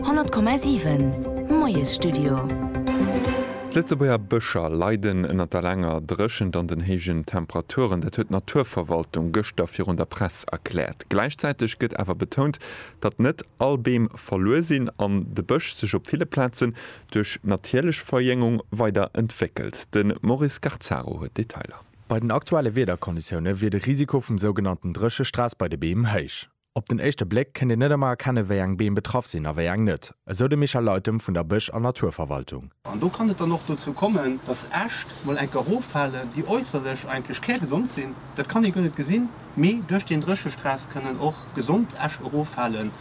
100,7 Moiesstudio. D'Lëtzebuerger Bëscher leiden ënner der laanger Dréchent an den héijen Temperaturen. Dat huet d'Naturverwaltung gëschter virun der Press erkläert. Gläichzäiteg gëtt awer betount, datt net all Beem verluer sinn an de Bësch sech op ville Plazen duerch natierlech Verjéngung weider entwéckelt. De Maurice Garzaro huet d'Detailer. Bei den aktuelle Wiederkonditioune wier de Risiko vum sougenannten Dréchestress bei de Beem héich. Op den éischte Bléck kënnt een net ëmmer erkennen, wéi eng Beem betraff sinn a wéi eng net, esou de Michel Leytem vun der Bësch an Naturverwaltung. An do kann et dann och dozou kommen, dass Äscht mol enker eroffalen, déi äusserlech eigentlech kärgesond sinn, dat kann ee guer net gesinn, mee duerch deen Dréchestress kënnen och gesond Äscht eroffalen.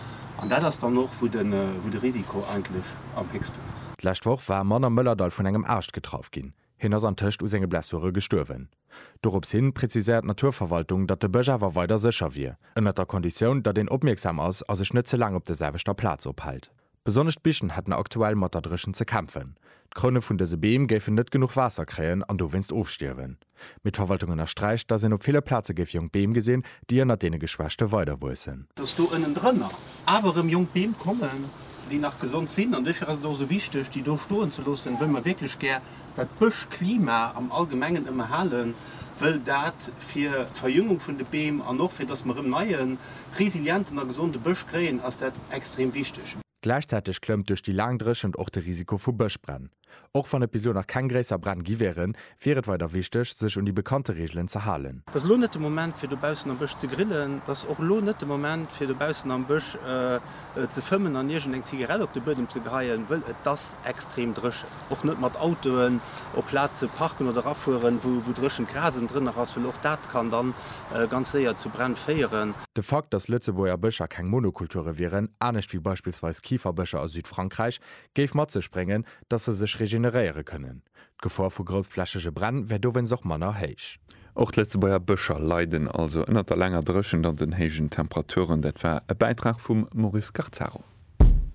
An dat ass dann och, wou de Risiko eigentlech am héchsten ass. D'lescht Woch war e Mann am Mëllerdall vun engem Aascht getraff ginn. Hien ass antëscht u senge Blessure gestuerwen. Dorops hin präziséiert d'Naturverwaltung, datt de Bësch awer weider sécher wier, ënnert der Konditioun, datt een opmierksam ass a sech net ze laang op der selwechter Plaz ophält. Besonnesch d'Bichen hätten aktuell mat der Dréchent ze kämpfen. D'Kroune vun dëse Beem géifen net genuch Waasser kréien an dowéinst ofstierwen. Mee d'Verwaltung ënnersträicht, datt een op ville Plaze géif jonk Beem gesinn, déi ënnert deene Geschwächte weiderwuessen. Datt do ënnendrënner awer erëm jonk Beem kommen, déi nach gesond sinn. An dofir ass et och esou wichteg, déi do stoen ze loossen, wëll mer wierklech gär dat Bëschklima am Allgemengen ëmmerhalen, wëll dat fir d'Verjüngung vun de Beem an och fir datt mer erëm neie, resilienten a gesonde Bësch kréien, ass dat extrem wichteg. Gläichzäiteg klëmmt duerch déi laang Dréchent och de Risiko vu Bëschbränn. Och wann et bis elo nach keng gréisser Bränn gi wieren, wier et weider wichteg, sech un déi bekannte Reegelen ze halen. Et ass elo net de Moment fir dobaussen am Bësch ze grillen. Et ass och elo net de Moment fir dobaussen am Bësch ze fëmmen an iergendeng Zigarett op de Buedem ze geheien, wëll et ass Extrem dréchen. Och net mat Autoen op Plaze parken oder erafueren, wou dréchent Gras ënnendrënner ass, well och dat kann da ganz séier zu Bränn féieren. De Fakt, datt Lëtzebuerger Bëscher keng Monokulture wieren, anescht wéi beispillsweis Kiferbëscher a Südfrankräich, géif mat sech bréngen, datt se sech regeneréiere kënnen. D'Gefor vu groussflächege Bränn wär dowéinst och manner héich. Och d'Lëtzebuerger Bëscher leiden also ënnert der laanger Dréchent an den héijen Temperaturen. Dat war e Bäitrag vum Maurice Garzaro.